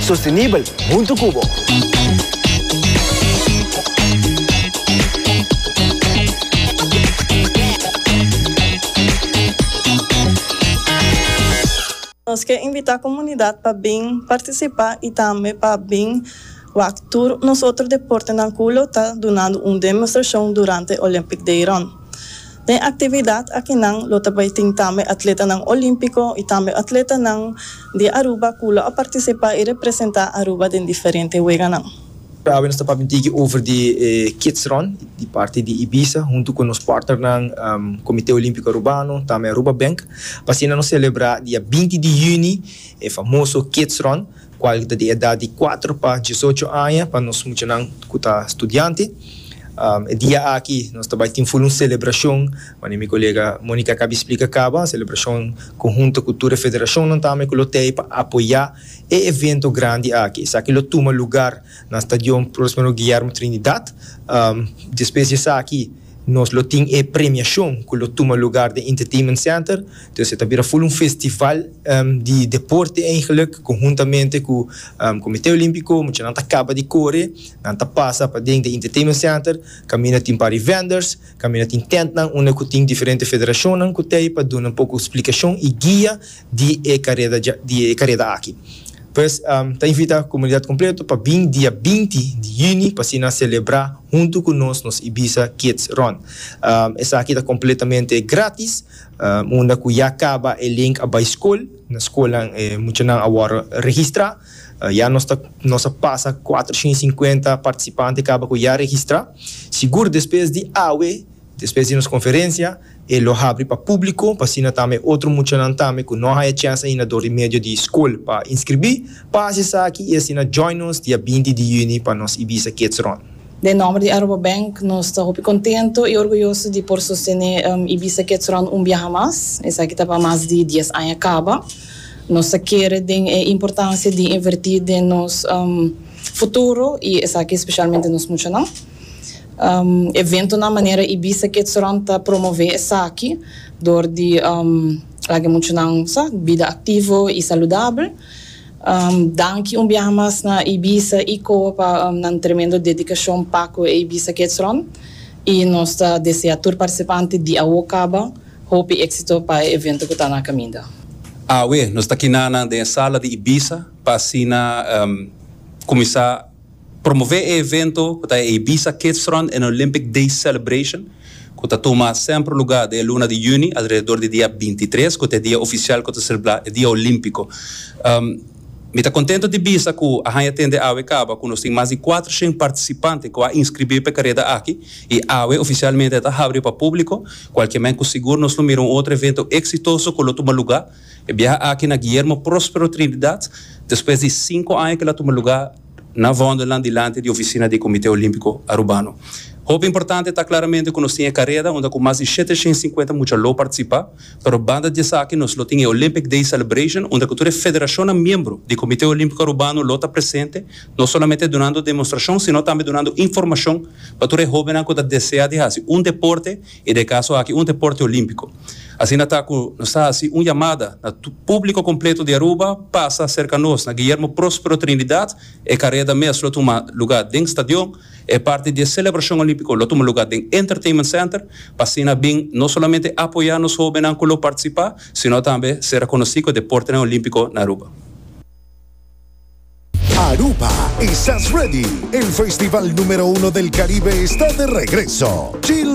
Sostenibel huntu cu bo. Nos ke invita comunidad pa bin participa y tambe pa bin wak tur nos otro deportenan cu lo ta dunando un demostracion durante Olympic Dayron. Den actividad akinan lo ta bay tin tambe atletanan Olimpico y tambe atletanan di Aruba cu lo a participa y representa Aruba den diferente weganan. Awe nos ta papia un tiki over di e Kids Run di parti di Ibiza huntu cu nos partnernan Comite Olimpico Arubano tambe Aruba Bank pa asina nos celebra dia binti di juni e famoso Kids Run kual ta di edat di kuater pa diesocho aña pa nos muchanan ku ta studiante. E dia aki nos ta bai tin full un selebrashon, manera mi kolega Monica a kabi splika kaba, un selebrashon konhunto ku tur e federashonnan tambe ku lo tei pa apoyá e evento grandi aki. Esaki lo tuma lugar na Stadion Prospero Guillermo Trinidad. Despues di esaki. Nos lo tin e premiashon ku lo tuma lugar den Entertainment Center. Entonces e ta bira ful un festival di deporte eigenlik konhuntamente ku Komite Olimpiko. Muchanan ta kaba di kore, nan ta pasa paden den Entertainment Center kaminda tin pari vendors, kaminda tin tentnan unda ku tin diferente federashonnan ku ta ei pa duna un poko splikashon i guia. di e kareda dja di e kareda aki. Pues ta invita komunidat kompleto pa bin dia binti di yüni pa asina selebrá huntu ku nos nos Ibiza Kids Run. Esaki ta kompletamente grátis unda ku ya kaba e link a bai skol, na skolnan e muchanan a wòrdu registrá. Ya nos ta nos a pasa kuatrocientosinkuenta partisipante kaba ku ya registrá. Sigur despues di awe. Despues di nos conferencia e lo habri pa publico pa asina tambe e otro muchanan tambe cu no haya chance ainda dor di medio di school pa inscribi pa haci esaki y asina join nos dia binti di juni pa nos Ibiza Kids Run. Den nomber di Aruba Bank nos ta hopi contento y orguyoso di por sostene Ibiza Kids Run un biaha mas. Esaki ta pa mas di dies aña caba. Nos ta kere den e importancia di inverti den nos futuro y esaki specialmente nos muchanan. eventonan manera Ibiza Kids Run ta promové esaki dor di laga e muchanan sa bida aktivo i saludabel. Danki un biaha mas na Ibiza i Koa pa nan tremendo dedikashon pa ku e Ibiza Kids Run i nos ta desea tur partisipante di awo kaba hopi éksito pa e evento ku ta na kaminda. Awe nos ta kina nan den e sala di Ibiza pa asina kuminsá. Promové e evento ku ta e Ibiza Kidsrun en Olympic Days Celebration ku ta tuma sèmpr lugá den e luna di yüni alrededor di dia binti i tres ku ta e dia ofisial ku ta selebrá e dia olímpiko. Mi ta kontentu di bisa ku a haña tende awe kaba ku nos tin mas di kuater shen partisipante ku a inskribí pa e kareda aki i awe ofisialmente a ta habri pa públiko kualke men ku sigur nos lo mira un otro evento eksitoso ku lo tuma lugá e biaha aki na Guillermo Prospero Trinidad despues di sinku aña ku el a tuma lugá na vòndernan dilanti di ofisina di Komité Olímpiko Arubano. Hopi importante ta klaramente ku nos tin e kareda unda ku mas di shete shen sinkuenta mucha lo partisipá, pero banda di esaki nos lo tin e Olympic Day Celebration unda ku tur e federashonnan miembro di Komité Olímpiko Arubano lo ta presente, no solamente dunando demostrashon sino tambe dunando informashon pa tur e hóbennan ku ta desea di hasi un deporte E de caso aki un deporte olimpico. Asina ta cu nos ta haci un yamada na publico completo di Aruba pasa cerca nos na Guillermo Prospero Trinidad e careda mes lo tuma lugar den stadion, e parti di e celebracion olimpico lo tuma lugar den Entertainment Center pa asina bin no solamente apoya nos hobennan cu lo participa sino tambe ser reconoci cu e deportenan olimpico na Aruba. Aruba, Esas Ready? El festival numero uno del Caribe esta de regreso!